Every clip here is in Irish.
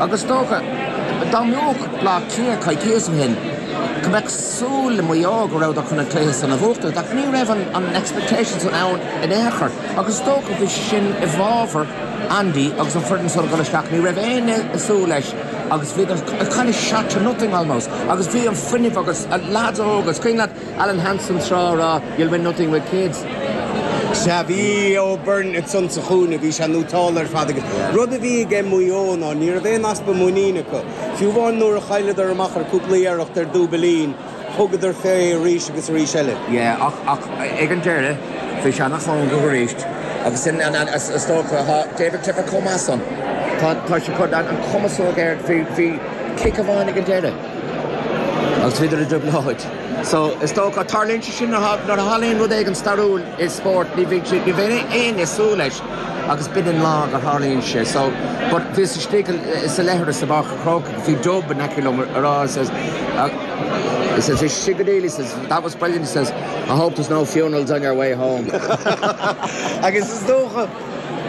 Agus is dócha, dá mbeadh Bleá Cliath coicíos ó shin, go mbeadh súil le Maigh Eo go rabhadar chun an cluiche san a bhuachtaint. Ach ní raibh an expectation san ann in aon chor. Agus is dócha bhí sé sin i bhfábhar Andy agus an foireann san ag dul isteach. Ní raibh éinne ag súil leis agus bhíodar kind of shot to nothing almost. Agus bhí an fuinneamh agus lads óga, it's kind of that, Alan Hansen tráth a rá, You'll win nothing with kids. Sea, bhí O'Byrne ansan sa chúinne, bhí sé nótáilte ar fad agus rud a bhí ag Maigh Eo ná ní raibh aon easpa muiníne acu. Fiú amháin nuair a chailleadar amach ar cúpla iarracht ar dúbilín, thugadar fé arís agus arís eile. Yeah, ach, ach ag an deireadh bhí sé nach ann dóibh arís agus sin an an is dócha tá David Clifford chomh maith san. Tá tá sé chun an cumasóg air bhí bhí cic amháin ag an deireadh. Agus féidir a dúbláid. So, is dócha, tarlaíonn sé sin nuair a tharlaíonn rud éigin stairiúil i spórt, ní bhíonn siad, ní bhíonn éinne ag súil leis agus b'in an lá gur tharlaíonn sé. So, but, bhíos istigh i, sa leithreas i bPáirc an Chrócaigh, bhí Dub in aice liom a rá, he says, he says, is sin go deal, he says, that was brilliant, he says, I hope there's no funerals on your way home. Agus is dócha.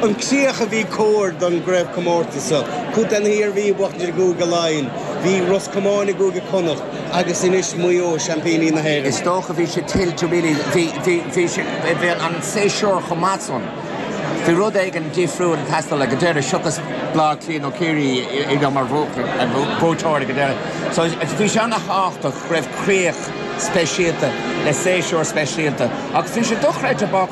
an críoch a bhí cóir don gcraobhchomórtas seo. Cuid den Iarmhí a bhuaigh i gCúige Laighean, bhí Ros Comáin i gCúige Connacht agus anois Maigh Eo, seaimpíní na hÉireann. Is dócha bhí sé tuillte really, bhí, bhí, bhí sé, bhí an séasúr chomh maith san, bhí rud éigin difriúil ag teastáil ag an deireadh, seachas Bleá Cliath nó Ciarraí ag dul mar bhuaiteoir ag an deireadh. So bhí sé an-thábhachtach go raibh críoch speisialta le séasúr speisialta agus bhí sé dochreidte bác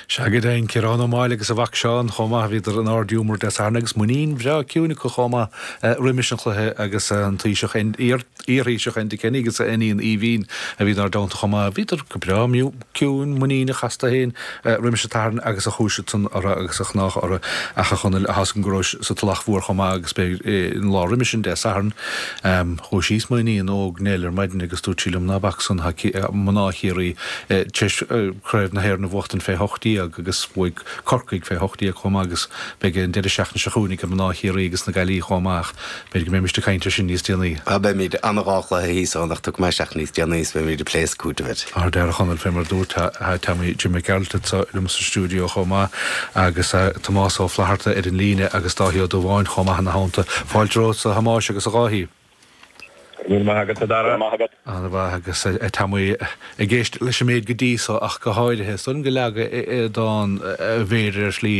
Shagart Fhein, Ciarán Ó Máille agus a mhac Seán chomh maith. Bhíodar in ardghiúmar Dé Sathairn agus muinín bhreá chiúin acu chomh maith roimis an chluiche agus an Taoiseach, iarThaoiseach Enda Kenny agus a iníon Aoibhinn a bhí inár dteannta chomh maith. Bhíodar go breá ciúin, muiníneach astu fhéin roimis an tSatharn agus a chúis san orthu agus a chnámha orthu Ach a Chonaill tá a fhios agam go rabhais sa Tulach Mhór chomh maith agus b'é an lá roimis sin, Dé Sathairn. Chuaigh síos m'iníon óg Nell ar maidin agus dúirt sí liom, 'Ná bac san, tá mná Chiarraí, Tar éis Craobh na hÉireann a bhuachtaint fé hocht déag agus bhuaigh Corcaigh fé hocht déag chomh maith agus beidh an deireadh seachtaine seo chugainn ag mná Chiarraí agus na Gaillimhe chomh maith ach b'fhéidir go mbeimis ag caint air sin níos déanaí. Á, beimid. An dá chluiche thíos ann ach tiocfaidh mé isteach níos déanaí agus beimid ag plé is ag cúiteamh air. Ardfhear, a Chonaill, fé mar a dúirt, tá Tommy Jim Mac Gearailt anso liom sa stiúideo chomh maith agus tá Tomás Ó Flatharta ar an líne agus Dáithí Ó Dubháin chomh maith ina theannta. Fáilte romhatsa, a Thomáis agus a Dháithí. Go raibh maith agat, a Dhara. Ana mhaith, agus tá mé ag éisteacht leis an méid go dtí so ach go háirithe. Is dóigh liom gur leagadar an mhéar air ar shlí.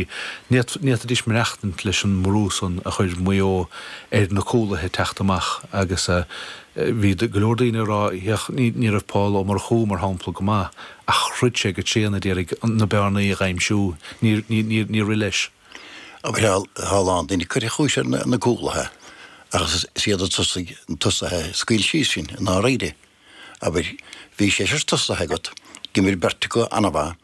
Ní fhéadfaidís maireachtaint leis an mbrú san a chuir Maigh Eo ar na cúlaithe ag teacht amach agus bhí go leor daoine ag rá Féach, ní raibh Pól Ó Murchú, mar shampla, go maith ach throid sé go tréan a d'iarraidh na bearnaí a dh'aimsiú. Níor rith leis. abair a lán daoine curtha chúis ar na cúlaithe agus is iad na tosaigh na tosaithe a scaoil síos sinn i ndáiríre. Abair, bhí seisear tosaithe agat, d'imir beirt acu an-mhaith,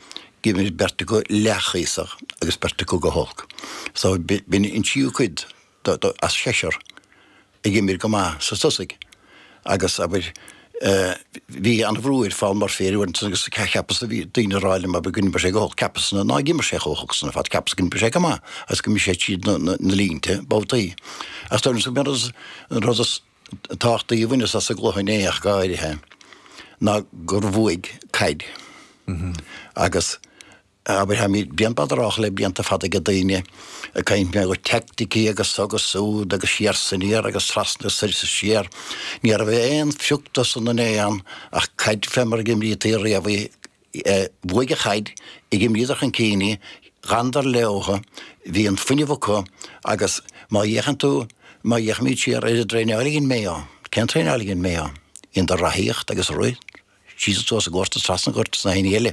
d'imir beirt acu leathchuíosach agus beirt acu go holc. So b'in an tríú cuid dó, dó, as seisear a d'imir go maith sna tosaigh agus, abair, eh, bhí an-bhrú ar Phaul Murphy ar fhoireann agus cheapas, bhí daoine a' rá liom, abair, go n-imir sé go holc, cheapas ná, nár imir sé chomh holc san ar fad, cheapas go n-imir sé go maith agus go mbí sé tríd na, na, na línte babhtaí. Ach deirim is go mb'fhearr as, an rud is tábhachtaí a bhaineas as an gcluiche inné ach go háirithe ná gur bhuaigh caid agus, Abair, táimid bréan bodhar le blianta fada aige daoine ag caint mar gheall ar teaicticí agus so agus súd agus siar 's aniar agus trasna soir is siar. Ní raibh aon phioc de san in aon am ach caid fé mar a imrítí riamh í a bhuaigh an chaid, d'imríodar chun cinn í d'fhanadar leathan bhí an fuinneamh acu agus má fhéachann tú má fhéachaimid siar ar an dtraenáil a dhein Maigh Eo cén traenáil a dhein Maigh Eo? Dheineadar reathaíocht agus rith síos suas an gort trasna an ghoirt is na haon ní eile.